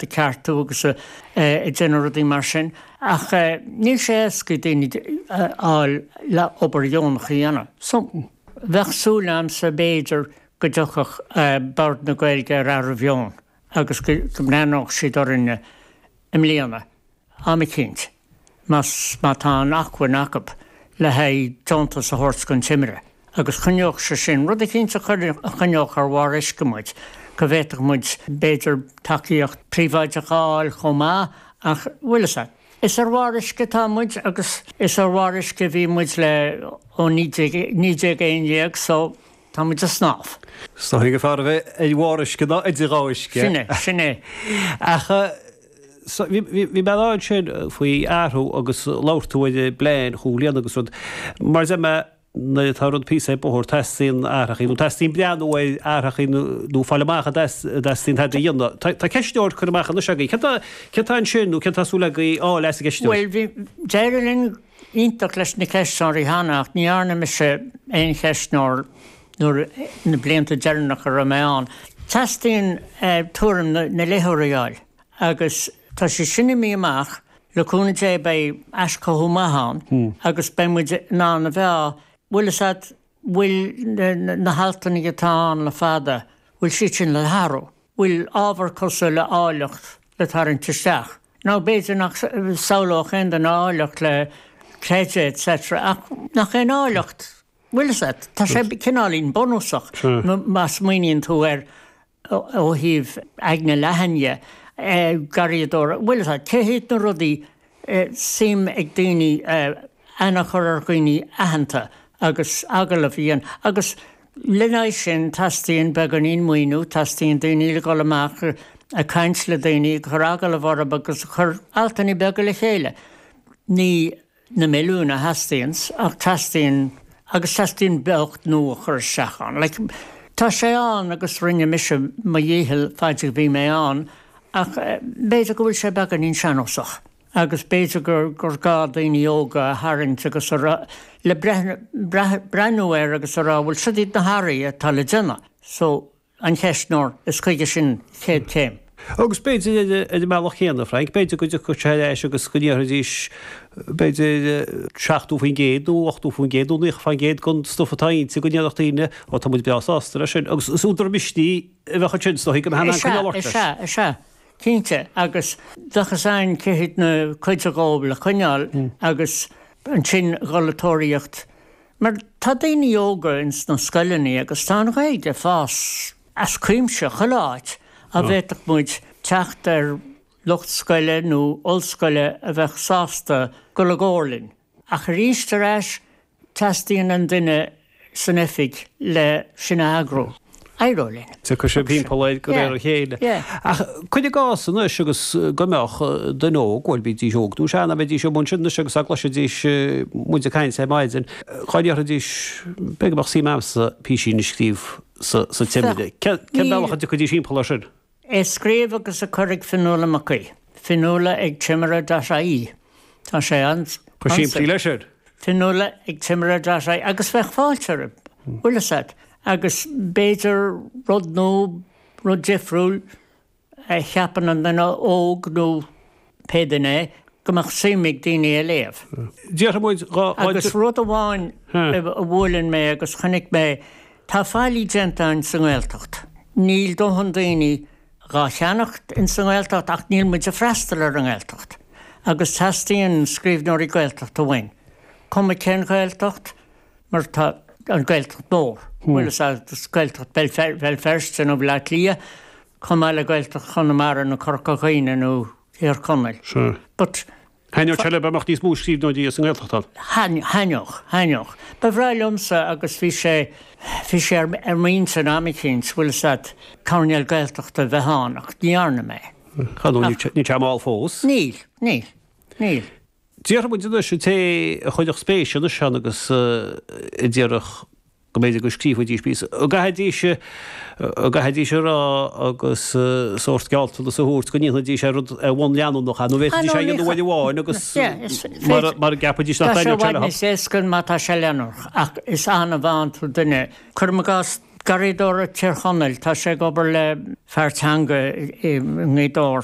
a ceartú agus ag déanamh rudaí mar sin ach níl sé éasca daoine a fháil le obair dheonach a dhéanamh so bheadh súil a'msa b'fhéidir go dtiocfadh Bord na Gaeilge ar athbhreithiúnas agus go mbreathnódh siad orainne i mbliana am eicínt, má tá an acmhainn acu le haghaidh deontas a thabhairt don Timire, agus choinneodh sé sin rud eicínt, choinneodh ar bharr uisce muid, go bhféadfadh muid, b'fhéidir, tacaíocht príobháideacha a fháil chomh maith, ach, bhuel, is ea, is ar bharr uisce atá muid, agus is ar bharr uisce a bhí muid le, ó, naoi déag a haon déag, so. Tá muid ag snámh. Is dóigh gur fearr a bheith ar bharr uisce ná idir dhá uisce. Sin é, sin é. Ach bhí mé ag caint ansin faoi athrú agus labhair tú ar an bplean chúig bhliana agus rud. Mar a deir mé, nuair atá rud píosa ar bóthar, teastaíonn athrachaí, nó teastaíonn breathnú ar athrachaí nó fáil amach an dteastaíonn tada a dhéanamh. Tá ceistneoir curtha amach anois agaibh. Céard atá ansin nó céard atá súil agaibh a fháil as an gceistneoir? Bhuel, bhí, d'éirigh linn iontach leis na ceistneoirí cheana ach ní dhearna mise aon cheistneoir nuair, na blianta deireanacha a raibh mé ann. Teastaíonn tuairim na léitheoirí a fháil agus tá sé sin imithe amach, le cúnamh Dé beidh aischothú maith ann agus beidh muid in ann a mheá, bhfuil fhios a'd, bhfuil na haltanna atá ann le fada, bhfuil siad sin le hathrú? bhfuil ábhar cosúil le áilleacht le tarraingt isteach? Nó b'fhéidir nach samhlódh aon duine áilleacht le creideamh etc. Ach nach aon áilleacht bhfuil fhios a'd? Tá sé cineáilín bunúsach, má smaoiníonn tú ar ó thaobh aigne leathan dhe, garraíodóireacht, bhfuil fhios a'd, cé hiad na rudaí, suim ag daoine aithne a chur ar dhaoine aitheanta agus agallamh a dhéanamh agus lena aghaidh sin teastaíonn beagáinín maoiniú, teastaíonn daoine le dhul amach ag caint le daoine, ag cur agallamh orthu agus ag cur altanna beaga le chéile. Ní. na milliúin a theastaíonns, ach teastaíonn, agus teastaíonn beocht nua a chur isteach ann. Like, tá sé ann agus rinne mise mo dhícheall faid a bhí mé ann, ach b'fhéidir go bhfuil sé beagáinín sean-nósach, agus b'fhéidir gur gá daoine óga a tharraingt agus a rá, le breathnú air agus a rá, bhuel, siod iad na hathraithe atá le déanamh. So. an ceistneoir, is chuige sin chéad chéim. Agus b'fhéidir ar an mbealach chéanna, a Frank, b'fhéidir go dtiocfadh sé ar ais agus go ndéarfaidís, b'fhéidir, 70% nó 80% nó 90% den stuif atá ann, go ndéarfadh daoine, Ó, tá muid breá sásta leis sin. Agus is údar misnigh a bheadh ansin, is dóigh, go mbeadh sé le coinneáil. Ó, is ea, cinnte. Agus bheadh fhios againn cé na codanna dhó le coinneáil agus ansin dhul ag tóraíocht. Mar tá daoine óga ins na scoileannaí agus tá an Ghaeilge ag fás as cuimse chuile áit a bhféadfadh muid teacht ar lucht scoile nó ollscoile a bheadh sásta dul i gcomhar linn. Ach aríst ar ais teastaíonn an duine san oifig le sin a eagrú. éireoidh linn. Tiocfaidh sé timpeall air de réir a chéile. Ach cuir i gcás anois agus go mbeadh duine óg, bhuel, bídís óg nó sean, a bheidís amuigh ansin anois agus dá gcloisfidís muid ag caint ar maidin, dá ndéarfaidís, b'fhéidir go mbeadh suim agamsa písín a scríobh sa Timire, cén bealach a dtiocfaidís timpeall air sin? a scríobh agus a chur ag Fionnuala Mac Aodha. Fionnuala ag Timire dot ie. Tá sé an-simplí. An simplí leis ar. Fionnuala ag Timire dot ie agus bheadh fáilte, an bhfuil fhios a't agus b'fhéidir rud nua, rud difriúil a cheapann an duine óg nó. pé duine é, go mbeadh suim ag daoine é léamh. Déarfaidh muid dhá oiread. Agus rud amháin a bhuaileann mé agus chonaic mé, tá faillí déanta ann sa nGaeltacht. Níl dóthain daoine dhá cheannacht in sa nGaeltacht ach níl muid ag freastal ar an nGaeltacht. Agus teastaíonn scríbhneoirí Gaeltachta uainn. Cuma cén Ghaeltacht, mar tá an Ghaeltacht mór, bhfuil fhios a't, Gaeltacht Bhéal Feirste nó Bhaile Átha Cliath, Chomh maith le Gaeltacht Chonamara nó Corca Dhuibhne nó Thír Chonaill but. Thaitneodh sé leat a mbeadh níos mó scríbhneoirí as an nGaeltacht ann. Thaitneodh, thaitneodh. Ba bhreá liomsa agus bhí sé, bhí sé ar m'intinn am eicínt, bhfuil fhios a't, coirnéal Gaeltachta a bheith ann ach ní dhearna mé. Cá bhfios, níl sé mall fós. Níl, níl, níl. Déarfaidh muid anois an té a chuirfeadh spéis anois ann agus a déarfadh. go mb'fhéidir go scríobhfaidís píosa, an gcaithfidís an gcaithfidís a rá agus sórt gealltanas a thabhairt go ndéanfaidís é rud ar bhonn leanúnach, nó bhféadfaidís é a dhéanamh uair amháin agus mara gceapfaidís nach dtaitníonn sé leo. Tá sé i bhfad níos éasca má tá sé leanúnach, ach is annamh a fhaigheann tú duine, cuirim i gcás garraíodóir Thír Chonaill, tá sé ag obair le Páirc Ghleann Bheatha i nGaoth Dobhair,